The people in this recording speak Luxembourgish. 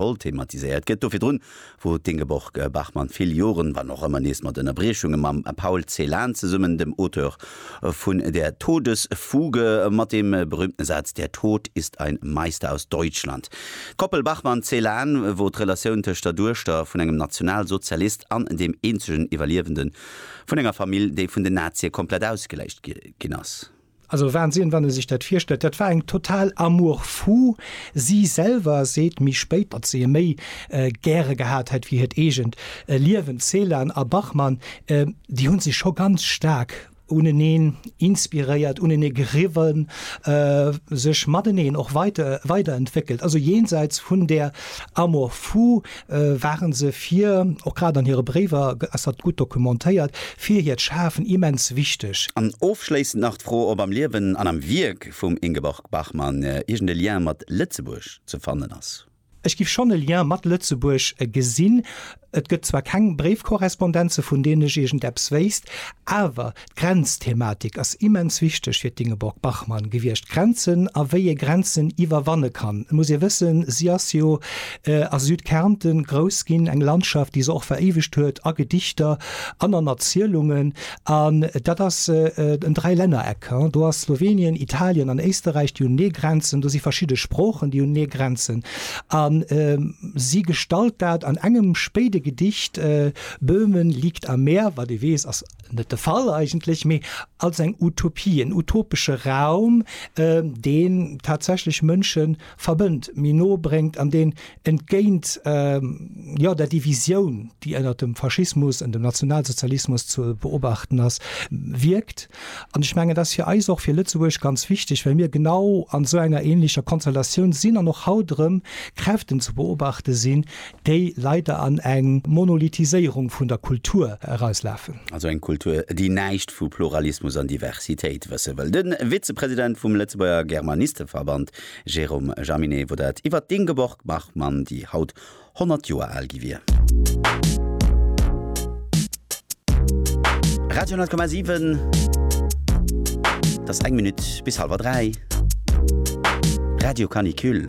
Oll thematiséiert gëtt. Do virdrun wor d'Ingeborg Bachmann vill Joren, wann och ëmmer nees mat Ënnerbriechunge, mam Paul Celan zesummen, dem Auteur vun Der Todesfuge, mat deem berühmten Saz Der Tod ist ein Meister aus Deutschland. D'Koppel Bachmann-Celan wor d'Relatioun tëscht der Duechter vun engem Nationalsozialist an deem eenzegen Iwwerliewende vun enger Famill, déi vun den Nazie komplett ausgeläscht ginn ass. Also Wahnsinn, wann ee sech dat virstellt. Dat war eng total amour fou. Si selwer seet méi spéit, datt se e méi gäre gehat hätt wéi hiert eegent Liewen. D'Ceylan a Bachmann, déi hu sech scho ganz staark uneneen inspiréiert, unenee geriwwen, sech mateneen och weiderentwéckelt. Also jenseits vun där amour fou waren se fir, och grad an hire Bréiwer ass dat gutt dokumentéiert, fir hiert Schafen immens wichteg. An ofschléissend nach d'Fro, ob am Liewen an am Wierk vum Ingeborg Bachmann iergend e Lien mat Lëtzebuerg ze fannen ass. Ech giff schonn e Lien mat Lëtzebuerg gesinn. Et gëtt zwar keng Bréifkorrespondenze vun deenen ech iergend eppes wéisst, awer D'Grenzthematik ass immens wichteg fir d'Ingeborg Bachmann gewiescht, Grenzen a wéi ee Grenzen iwwerwanne kann. Et muss ee wëssen, si ass jo a Südkärnten grouss ginn, eng Landschaft, déi se och veréiwegt huet a Gedichter an an Erzielungen. An dat ass en Dräilännereck, do ass Slowenien, Italien an Éisterräich, déi hunn Neegrenzen, do si verschidde Sproochen, déi hunn Neegrenzen. A si gestalt dat an engem spéide Gedicht, Böhmen liegt am Meer, wat ee weess, ass net de Fall eigentlech, mee als eng Utopie, en utopesche Raum, deen tatsächlech Mënsche verbënnt, méi no bréngt an deen entgéint jo der Divisioun, déi ënnert dem Faschismus an dem Nationalsozialismus ze beobachten ass, wierkt. An ech mengen, et ass fir eis och, fir Lëtzebuerg ganz wichteg, well mir genau an esou enger änlecher Konstellatioun sinn an och haut erëm Kräften ze beobachte sinn, déi leider an eng Monolithiséierung vun der Kultur erauslafen. Also eng Kultur, déi näischt vu Pluralismus an Diversitéit wësse wëll. De Vizepresident vum Lëtzebuerger Germanisteverband Jérôme Jaminet wor dat iwwert d'Ingeborg Bachmann, déi haut 100 Joer al gi wier. Radio 10,7 Et ass eng Minutt bis hallwer dräi. Radio Canicule.